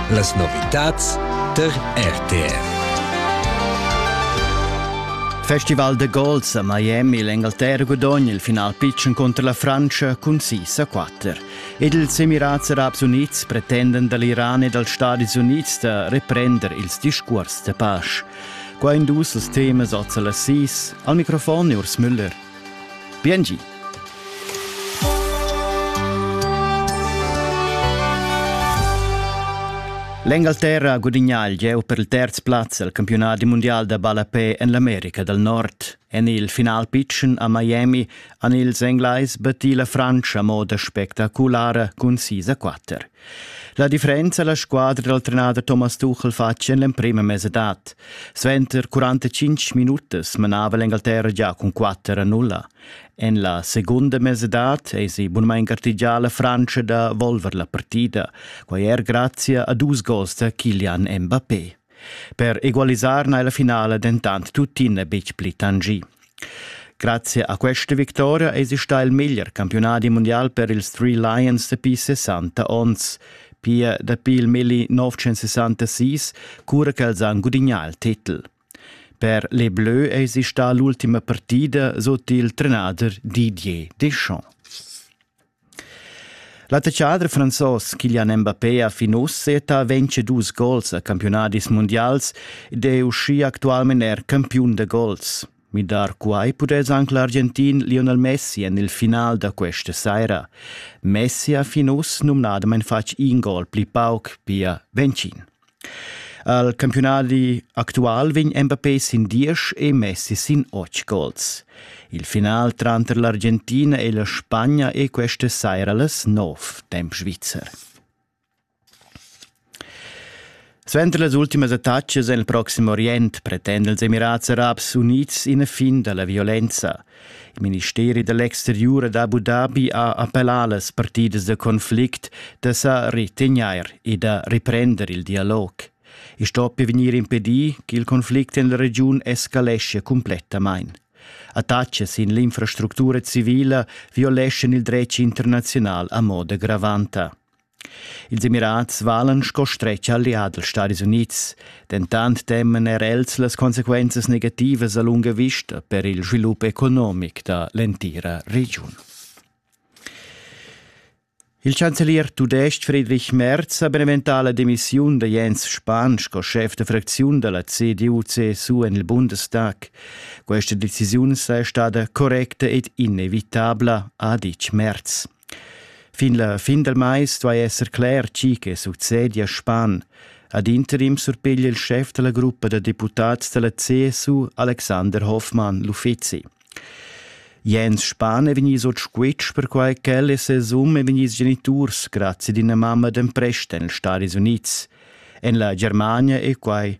Las novitads tar RTR. Festival de Golf a Miami l'Engalterra gudogna il final pitschen contro la Francia cun 6 a 4. Ed ils Emirats Arabs Unids pretenden dall'Iran e dals Stadis Unids da reprender ils discuors de pace. Qua in dus els temas oz alla 6. Al microfon è Urs Müller. Biengi. L'Engalterra gudignà il gieu per il terz plaz al campiunat mundial da ballapè en l'America dal Nord. En il final pitschen a Miami han ils Englais battì la Frantscha a moda spectaculara cun 6 a 4. La differenza la squadra dal trenader Thomas Tuchel fatg en l'emprima mesadad. Suenter 45 minutas manava l'Engalterra già cun 4 a 0. En la segunda mesadad esi bunmain gartegià la Frantscha da volver la partida, quai er grazia a dus gols da Kilian Mbappé. Per egualisar n'ha la finala dentant tuttina betg pli tangì. Grazie a questa victoria es stà il miglior campiunadi mundial per ils Three Lions dapi 60 onns. Pia dapi il milli 1966, cura ch'els han gudignà il titel. Per les Bleus es stà l'ultima partida sut il trenader Didier Deschamps. L'attaccader franzos Kylian Mbappé ha fin uss seta ventg dus gols a campiunadis mundials ed è uschia actualmain er campiun da gols. Midar quai pudess anc l'Argentin Lionel Messi en il final da questa saira. Messi ha fin uss numnadamain fatg in gol pli pauc, pia ventgin. Al campiunadi actual vegn Mbappé sin diesch e Messi sin otg gols. Il final tranter l'Argentina e la Spagna è questa saira las nov, temp svizzer. Suenter las ultimas attacas en il proxim Orient pretend els Emirats Arabs Unids ina fin da la violenza. Il ministeri da l'exteriur ad Abu Dhabi ha appellà las partidas da conflict da sa retegnair e da reprender il dialog. I stoppi vegnir impedì ch'il conflict en la regiun escaleschia cumplettamain. Attacchi sin l'infrastructura civila violeschan il dretg internaziunal a moda gravanta. Ils Emirats valan sco stretg allià dals Stadis Unids, dentant teman er els las consequenzas negativas a lunga vista per il svilup economic da l'entira regiun. Il chancelier tudestg Friedrich Merz ha beneventà la demissiun da Jens Spahn sco schef da fracziun da la CDU-CSU en il Bundestag. Questa decisiun saja stada correcta ed inevitabla, ha ditg Merz. Fin la fin del mais duai esser cler tgi che succedia span. Ad interim surpiglia il schef della gruppa da deputats della CSU Alexander Hoffmann l'uffizi. Jens Spahn è vegni sot squitsch perquai ch'el e ses um è vegni geniturs grazie d'ina mamma d'emprest en Stati Unids. En la Germania è quai